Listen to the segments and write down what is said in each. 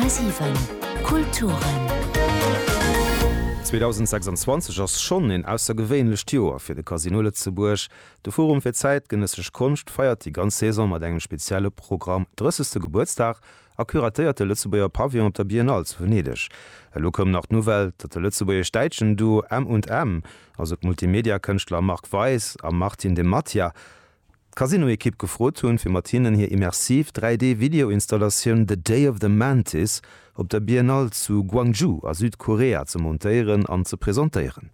10,7 Kulturen. 2026 ass schonn een aussergewéinlecht Joer fir de Casino Lëtzebuerg. De Forum fir zäitgenëssesch Konscht feiert déi ganz Saison mat engem spezielle Programm, 30. Gebuertsdag a curatéiert de Lëtzebuerger Pavillon op der Biennale zu Venedeg. Elo koum nach d'Nouvelle, datt de lëtzebuergesch-däitschen Duo M&M, also d'Multimedia-Kënschtler Marc Weis a Martin de Mattia, d'Casino-Ekipp gefrot hunn, fir mat hinnen hir immersiv 3D-Video-Installatioun The Day of the Mantis op der Biennale zu Gwangju a Südkorea ze montéieren an ze presentéieren.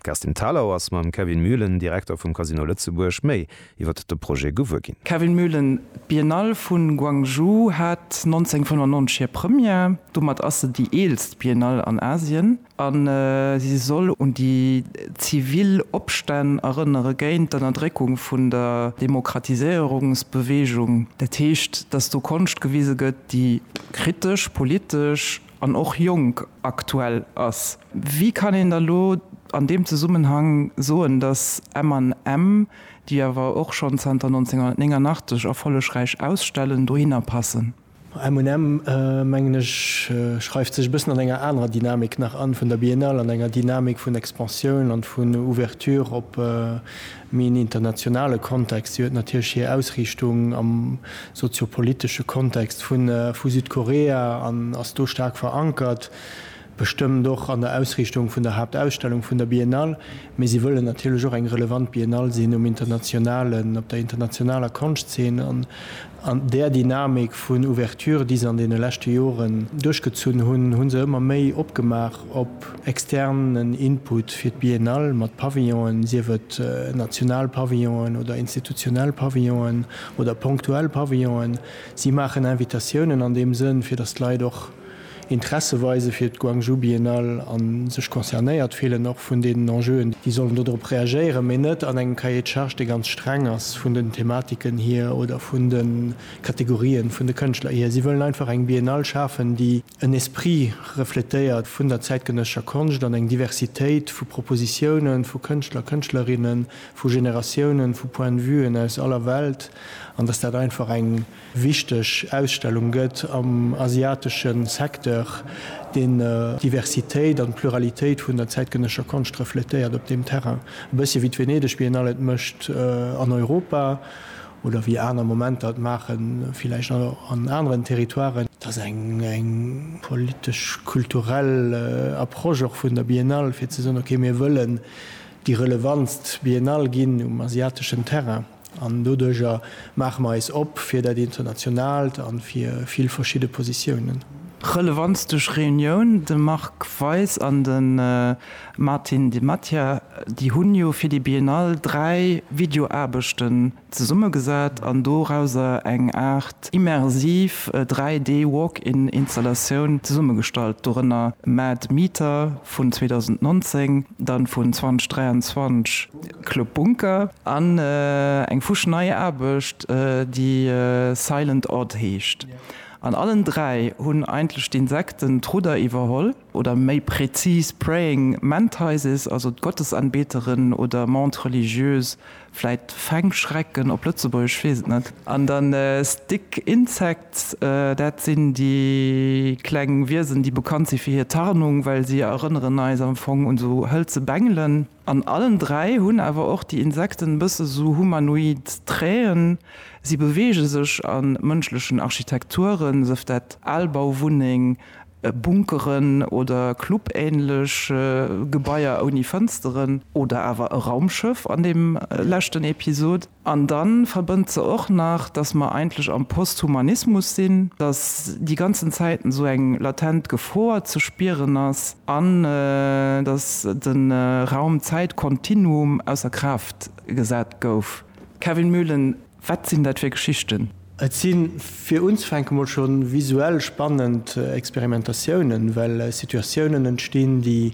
D'Kerstin Thalau ass mam Kevin Mühlen, Direkter vum Casino Lëtzebuerg, méi iwwert de Projet gewuer ginn. Kevin Mühlen, D'Biennale vu Gwangju hat 1995 hir Première. Domat ass se déi eelst Biennale an Asien. a si soll un déi zivil Opstänn erënnere géint d'Ënnerdréckung vun der Demokratiséierungsbewegung. Dat heescht, datt do Konscht gewise gëtt, déi kritesch, politesch an och jonk aktuell ass. Wéi kann een da lo an deem Zesummenhang soen, datt MM, déi awer och schonn zanter 1989 erfollegräich ausstellen, dohinner passen? MM, mengen ech, schreift sech e bëssen an enger anerer Dynamik nach an, vun der Biennale, an enger Dynamik vun Expansioun an vun Ouverture op méi en internationale Kontext. Si huet natierlech hir Ausriichtung am soziopolitesche Kontext vu Südkorea an ass do staark verankert. Bestëmmt och an der Ausriichtung vun der Haaptausstellung vun der Biennale, mee si wëllen natierlech och eng relevant Biennale sinn um internationalen, op der internationaler Konschtzeen an där Dynamik vun Ouverture, déi se an deene leschte Joren duerchgezunn hunn, hu se ëmmer méi opgemaach op externen Input fir d'Biennale mat Pavillonen, sief et national Pavillonen oder institutionell Pavillonen oder ponktuell Pavillonen. Si maachen Invitatiounen an deem Sënn, fir datt d'Leit och Interesse weise fir d'Guangzhou Biennale a sech concernéiert fillen, och vun deenen Enjeuen, déi sollen dodrop reagéieren, mee net an engem Cahier de charges, dee ganz streng ass vun den Thematiken hier oder vun de Kategorien vun de Kënschtler hier. Si wëllen einfach eng Biennale schafen, déi en Esprit refletéiert vun der zäitgenëssescher Konscht an eng Diversitéit vu Propositiounen, vu Kënschtler, Kënschtlerinnen, vu Generatiounen, vu Point de vuen aus aller Welt an dass dat einfach eng wichteg Ausstellung gëtt am asiatesche Secteur, deen d'Diversitéit an d'Pluralitéit vun der zäitgenësscher Konscht refletéiert op deem Terrain. E bëssche wéi d'Venedeg Biennale et mécht an Europa oder wéi aner Momenter et maachen, villäicht och an aneren Territoiren, et ass eng politesch-kulturell Approche och vun der Biennale, fir ze soen, okay, mir wëllen déi relevantst Biennale ginn um asiateschen Terrain. An doduerjer maache mer eis op fir dat Internationalt a fir vill verschidde Positiounen. Relevanz duerch Reunioun, De Marc Weis an de Martin Di Mattia, déi hunn jo fir déi Biennale dräi Videoaarbechten zesummegesat an dorauser eng Aart immersiv 3D Walk-in Installatioun zesummegestallt, dorënner Mad Meter vun 2019, dann vun 2023. Club Bunker an eng fusch nei Aarbecht, déi Silent Odd heescht. An allen dräi hunn eigentlech d'Insekten d'Rudder iwwerholl, oder méi prezis Praying Mantises, also d'Gottesanbeteren oder Mantes religieuses, vläit Fängschrecken op Lëtzebuergesch, weess et net. An dann Stick Insects, dat sinn déi kleng Wiesen, déi bekannt si fir hir Tarnung, well si erënneren eis am Fong un esou hëlze Bengelen. An allen dräi hunn awer och déi Insekten e bësse sou humanoid Trait'en, si beweege sech a mënschlechen Architekturen, sëf dat al Bauwunneng, Bunkeren oder Club-ähnlech Gebaier ouni Fënsteren oder awer e Raumschëff an deem leschten Episod. An dann verbënnt se och nach, dass mer eigentlech am Posthumanismus sinn, dass déi ganzen Zäiten esou eng latent Gefor ze spieren ass an dass de Raum-Zäit-Kontinuum ausser Kraaft gesat gouf. Kevin Mühlen, Wat sinn dat fir Geschichten? Et si fir unzefänke mol scho visuell spannend Experimentatiounen, well Situatiounen entstinn, déi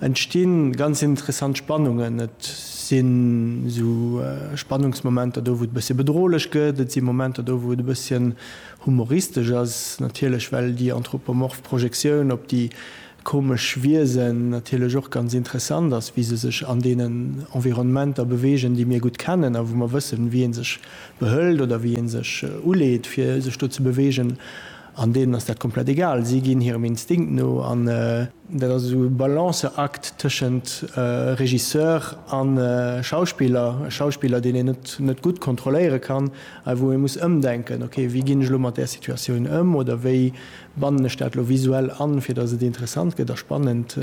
entsti ganz interessant Spannungen. Et sinn esou Spannungsmomenter do, wou et e bësschen bedrohlech gëtt, et si Momenter do, wou et e bësschen humoristesch ass, natierlech well déi anthropomorph Projektioun op déi komesch Wiesen natierlech och ganz interessant ass, wéi se sech an deenen Environnementer bewegen, déi mir gutt kennen a wou mer wëssen, wéi ee sech behëlt oder wéi ee sech uleet, fir sech do ze bewegen. An deenen ass dat komplett egal, si ginn hirem Instinkt no. An dat ass esou e Balanceakt tëschent Regisseur a Schauspiller, e Schauspiller, deen een net gutt kontrolléiere kann a wou ee muss ëmdenken, ok, wéi ginn ech elo mat där Situatioun ëm oder wéi bannen ech dat elo visuell an, fir datt et interessant gëtt a spannend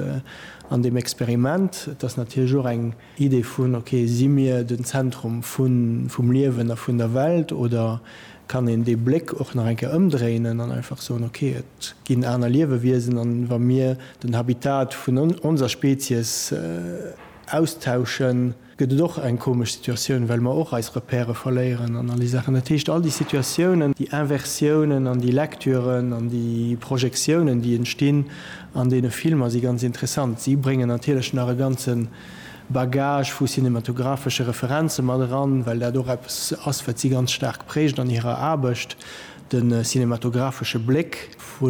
an deem Experiment. Et ass natierlech och eng. Idee vun, ok, si mir den Zentrum vum Liewen a vun der Welt oder kann een dee Bléck och nach eng Kéier ëmdréinen an einfach soen, ok, et ginn aner Liewewiesen an wa mir den Habitat vun onser Spezies austauschen, gëtt et och eng komesch Situatioun, well mer och eis Repèrë verléieren an all déi Saachen. Dat heescht, all déi Situatiounen, déi Inversiounen an déi Lektüren an déi Projektiounen, déi entstinn, An deene Filmer si ganz interessant. Si bréngen natierlech nach e ganze Bagage vu cinematographesche Referenze mat eran, well dat och eppes ass, wat si ganz staark präägt an hirer Aarbecht, de cinematographesche Bléck vu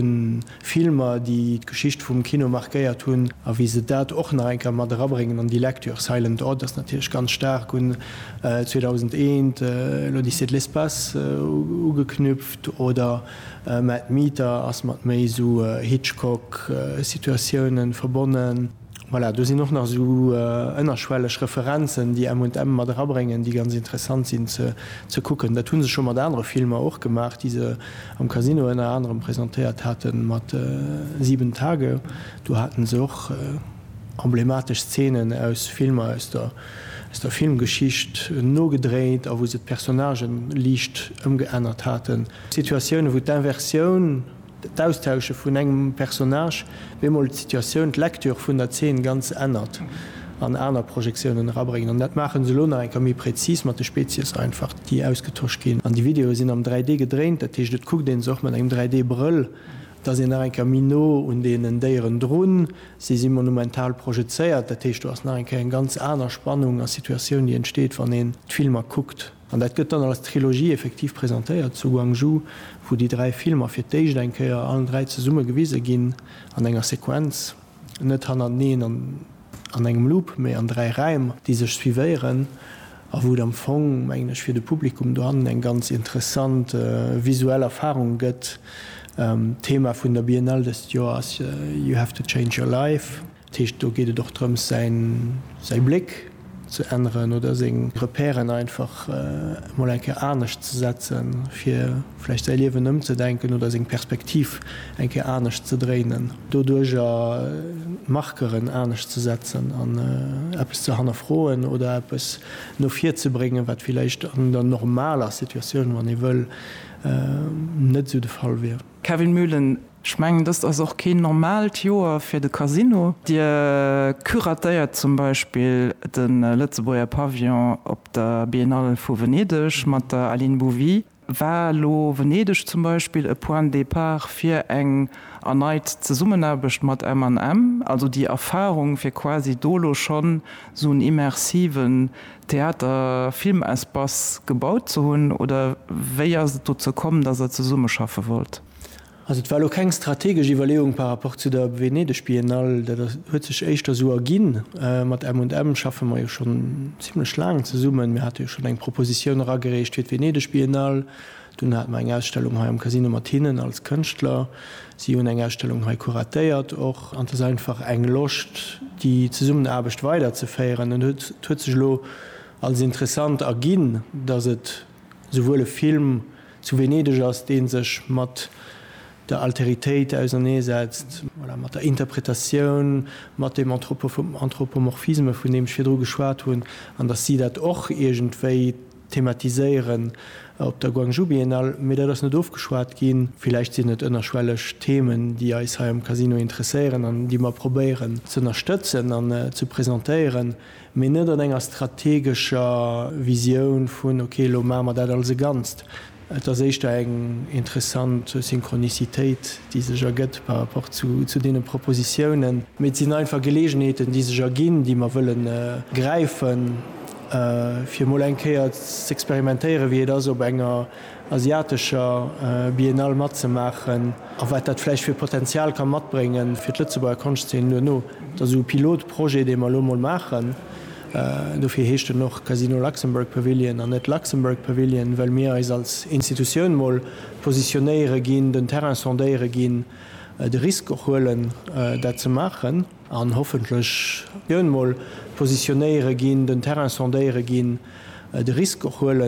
Filmer, déi d'Geschicht vum Kino markéiert hunn, a wéi se dat och nach eng Kéier mat erabréngen an déi Lektür. Silent Odd ass natierlech ganz staark un 2001, L'Odyssée de l'espace ugeknüpft, oder. Mad Meter ass mat méi esou Hitchcock Situatiounen verbonnen. Voilà, do sinn och nach esou ënnerschwelleg Referenzen déi M&M mat erabréngen, déi ganz interessant sinn ze kucken. Dat hu se scho mat anere Filmer och gemaach, déi se am Casino ënner anerem presentéiert haten, mat Sieben Tage. Do haten se och emblematesch Szenen aus Filmer aus der Filmgeschicht nogedréit a wou se d'Personnagen liicht ëmgeännert haten. Situatioune wou d'Inversioun, d'Austausche vun engem Personnage, bemol d'Situatioun, d'Lecture vun der Zeen ganz ännert an aner Projektiounen erabréngen. An dat maachen se elo nach eng Kéier méi präzis mat de Spezies einfach, déi ausgetosch ginn. An déi Videoe sinn am 3D gedréint, dat heescht et kuckt een se och mat engem 3D Brëll, da sinn nach eng Kéier méi no un deenen Déieren drun, se si monumental projezéiert, dat heescht do ass nach eng Kéier eng ganz aner Spannung a Situatioun déi entsteet wann een d'Filmer kuckt. An dat gëtt dann als Trilogie effektiv presentéiert zu Gwangju, wou déi dräi Filmer fir d'éischt eng Kéier allen dräi zesumme gewise ginn, an enger Sequenz, net hannerteneen an an engem Loop, mee an dräi Räim, déi sech suivéieren, a wou et am Fong, mengen ech, fir de Publikum dohannen eng ganz interessant visuell Erfarung gëtt. D'Thema vun der Biennale dëst Joer ass You have to change your life. Dat heescht, do geet et och drëms, säi Bléck ze änneren oder seng Repèren einfach emol eng Kéier anescht ze setzen, fir vläicht säi Liewen ëmzedenken oder seng Perspektiv eng Kéier anescht ze dréinen. Doduerjer d'Markeren anescht ze setzen an eppes ze hannerfroen oder eppes no vir ze bréngen, wat villäicht an der normaler Situatioun, wann ee wëll, net esou de Fall wier. Kevin Mühlen Ech mengen, dëst ass och keen normaalt Joer fir de Casino. Dir curatéiert zum Beispill de Lëtzebuerger Pavillon op der Biennale vu Venedeg mat der Aline Bouvy. War elo Venedeg zum Beispill e Point de départ fir eng erneit Zesummenaarbecht mat MM, also déi Erfarung, fir quasi do elo schonn esou en immersiven Theater Film Espace gebaut ze hunn oder wéi ass et dozou komm, datt der zesummeschaffe wollt? Also et war elo keng strategesch Iwwerleeung par rapport zu der Venedeg Biennale, dat huet sech éischter sou erginn. Mat M&M schaffe mer jo schonn zimlech laang zesummen, mir hate jo schonn eng Propositioun eragereecht fir d'Venedeg Biennale, Dunn hate mer eng Ausstellung hei am Casino mat hinnen als Kënschtler. Si hunn eng Ausstellung hei kuratéiert och. An et ass einfach eng Loscht, déi Zesummenaarbecht weiderzeféieren. An et huet sech elo als interessant erginn, datt et souwuel e Film zu Venedeg ass, dee sech mat der Alteritéit auserneesetzt, voilà, mat der Interpretatioun, mat dem Anthropomorphisme, vun deem ech virdru geschwat hunn, an datt si dat och iergendwéi thematiséieren op der Guangzhou Biennale, mee dat ass net ofgeschwat ginn. Villäicht sinn et ënnerschwelleg Themen, déi eis hei am Casino interesséieren an déi mer probéieren z'ënnerstëtzen an ze presentéieren, mee net an enger strategescher Visioun vun, ok, elo maache mer dat als e Ganzt. Et ass éischter eng interessant Synchronicitéit, déi sech ergëtt par rapport zu deene Propositiounen. Mee et sinn einfach Geleegenheeten, déi sech erginn, déi mer wëlle gräifen, fir emol eng Kéier z'experimentéieren, wéi et ass op enger asiatescher Biennale matzemaachen a wat dat vläicht fir Potenzial ka matbréngen fir d'Lëtzebuerger Konschtzeen duerno. Et ass esou e Pilotprojet, dee mer elo emol maachen. Dofir heescht en och Casino Luxembourg Pavilion an net Luxembourg Pavilion, well mir eis als Institutioun mol positionéiere ginn, den Terrain sondéiere ginn, de Risk och huelen, dat ze maachen an hoffentlech mol positionéiere ginn, den Terrain sondéiere ginn, de Risk och huelen,